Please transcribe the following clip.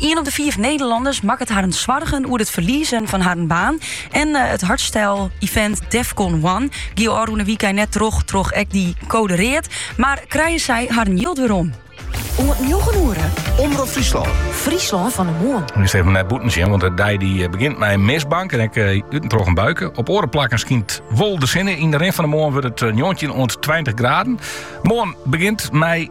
Ien op de fiif Nederlanners makket harren soargen oer it ferliezen fan harren baan. En eh, it hardstyle-event Defqon One gie ôfrûne wykein net troch troch ek dy kode read, mar krije sy harren jild werom. Oant njoggen oere. Omrop Fryslân. Fryslân fan 'e Moarn. No efkes nei bûten sjen, want de dei dy eh, begjint mei in mistbank en ek út en troch in buike. Op oare plakken skynt wol de sinne. Yn de rin fan de moarn wurdt it 19 eh, oant 20 graden. Moarn begjint mei